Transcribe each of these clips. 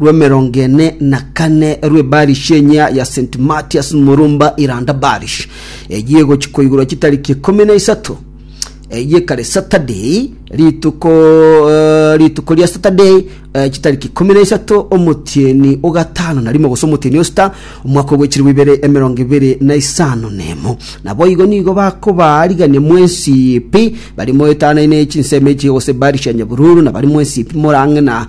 rw'emerongo ene na kane rw'ebarishia enyia ya St. Matias Murumba Iranda Barish, eyio egochi koigurwa chitariki ikomi na isato, eyio ekare Saturday, rituko eh, rituko ria Saturday eh, chitariki ikomi na isato omotieni o gatano na rimo gose omotieni o sita omwaka ogwechirigwa ibere emerongo ibere na isano na emo. Naboigo nigo bakobaarigania mwensipi bari moetanaine chinsemo echi gose barishia nyabururu na bari mwensipi morang'e na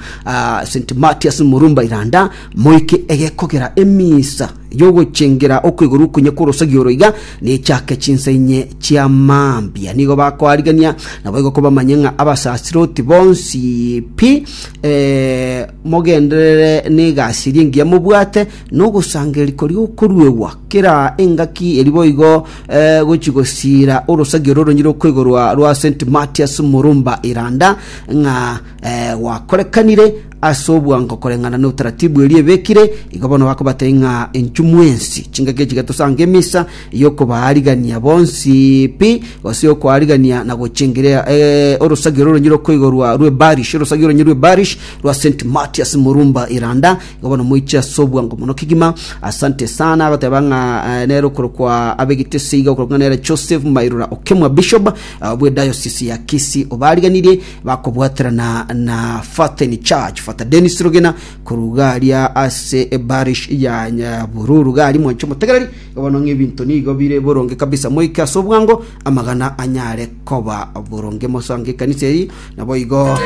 St. Matias Murumba Iranda, moike egekogera emisa y'ogochengera okwegorwa okonye kw'orosegi oro iga nechake chinsa inye chia mambia. Nigo bakoarigania naboigo kobamanye ng'a abasasiroti bonsi pi eh, mogenderere n'egasi eria engiya mobwate n'ogosangereria koria okoruegwa kera engaki eri boigo eh, gochi gosiira orosegi oro oronyire okwegorwa rwa St. Matias Murumba Iranda ng'a eh, gwakorekanire ase obwango koreng'ana na utaratibu eria ebekire igo bono bakobatei ng'a enchumu ensi chingaki echi getosanga emisa yokobaarigania bonsi pi gose yokoarigania na gochengerea eh, orosagio roronyi rokoigorwa rwe barish orosagio oronyi rwe barish rwa st matias murumba iranda igo bono moiche ase obwango mono kigima asante sana agoteba ng'a eh, nero korokwa abegitese iga okorokwa nere joseph mairora okemwa bishop eh, bwe diocese ya kisi obariganirie bakobwaterana na Faten Church, Fata Dennis Rugina, korwa garia ase ebarish ya Nyabururu gari mwancho motegereri bono ng'ebinto nigo bire boronge kabisa moike ase obwango amagana anyare koba boronge mosange ekanisa eri nabo igo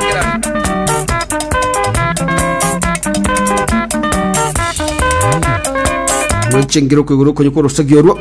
mwanchengire okwegura okonye korosagio orwo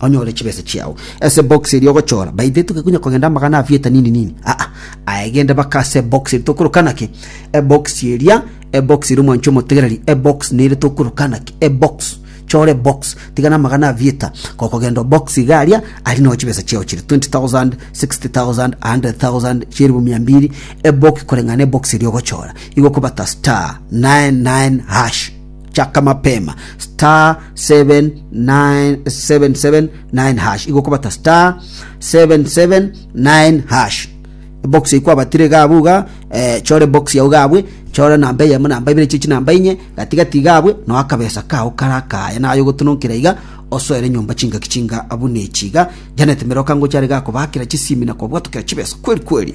onyore chibesa chiao ase box eria ogochora by the toke kunya kogenda amagana afieta nini nini aa ah, ah. aegende baka ase box eria tokorokana ki ebox eria ebox eria omwancho omotegereri ebox nere tokorokana ki ebox chore box tigana amagana afieta kokogenda box igaria ari no chibesa chiao chiri 20000 60000 100000 chiribu mia mbiri ebox koreng'ana ebox eria ogochora igo kobata star 99 hash Chaka mapema *779#, igo okobata *779#. Ebox eye kwabatire iga abwo iga, eh, chora ebox yao iga abwe, chora namba eyemo namba ibere chie chinamba inye, gati gati iga abwe, noe akabesa kao kare akaya naye ogotononkera iga, osoere nyomba chingaki chinga buna echi iga. Janet Miroka ngocha are iga akobaakera chisimi na kobwatokera chibesa kweri kweri.